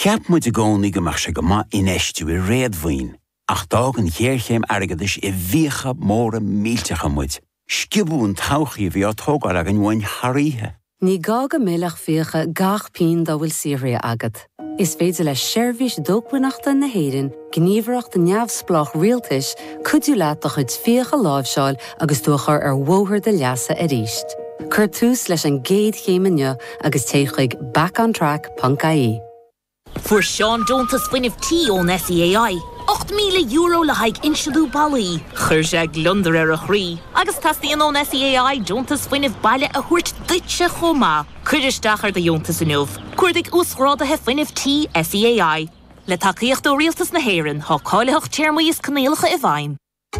Cheap muid i gcónaí go mbeadh sé go maith infheistiú i réadmhaoin, ach d'fhág an ghéarchéim airgeadais i bhfiacha móra millteacha muid. Sciobadh an todhchaí a bhí á tógáil againn uainn thar oíche. Ní gá go millfeadh fiacha gach pínn dá bhfuil saothraithe agat. Is féidir le Seirbhís Dócmhainneachta na hÉireann gníomhaireacht neamhspleách rialtais, cuidiú leat do chuid fiach a láimhseáil agus tú a chur ar bhóthar do leasa arís. Cuir tús leis an gcéad chéim inniu agus téigh chuig backontrack.ie. Fuair Seán deontas Fuinnimh Tí ón SEAI, €8,000 le haghaidh insliú ballaí. Chuir sé gliondar ar a chroí agus teastaíonn ón SEAI deontas fuinnimh baile a thabhairt duitse chomh maith. Cuir isteach ar do dheontas inniu. Cuardaigh Uasghráduithe Fuinnimh Tí SEAI. Le tacaíocht ó Rialtas na hÉireann, tá cáilitheacht, téarmaí is coinníollacha i bhfeidhm.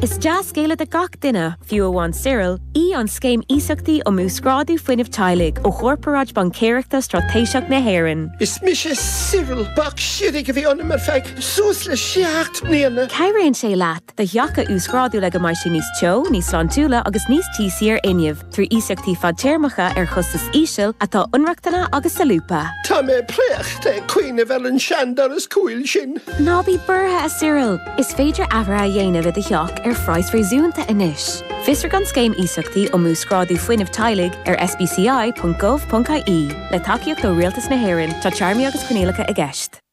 Is dea-scéala do gach duine, fiú amháin Cyril, í an Scéim Iasachtaí um Uasghrádú Fuinnimh Teaghlaigh ó Chorparáid Baincéireachta Straitéiseach na hÉireann. Is mise Cyril. Bac siridh a bhí ionam ar feadh suas le seacht mbliana. Cabhraíonn sé leat do theach a uasghrádú le go mbeidh sé níos teo, níos sláintiúla agus níos tíosaí ar fhuinneamh, trí iasachtaí fadtéarmacha ar chostas íseal atá inrochtana agus solúbtha. Tá mé préachta ag cuimhneamh ar an seandoras cúil sin. Ná bí buartha, a Cyril! Is féidir athruithe a dhéanamh i do theach ar phraghas réasúnta anois. Fiosraigh an Scéim Iasachtaí um Uasghrádú Fuinnimh Teaghlaigh ar sbci.gov.ie. Le tacaíocht ó Rialtas na hÉireann, tá téarmaí agus coinníollacha i gceist.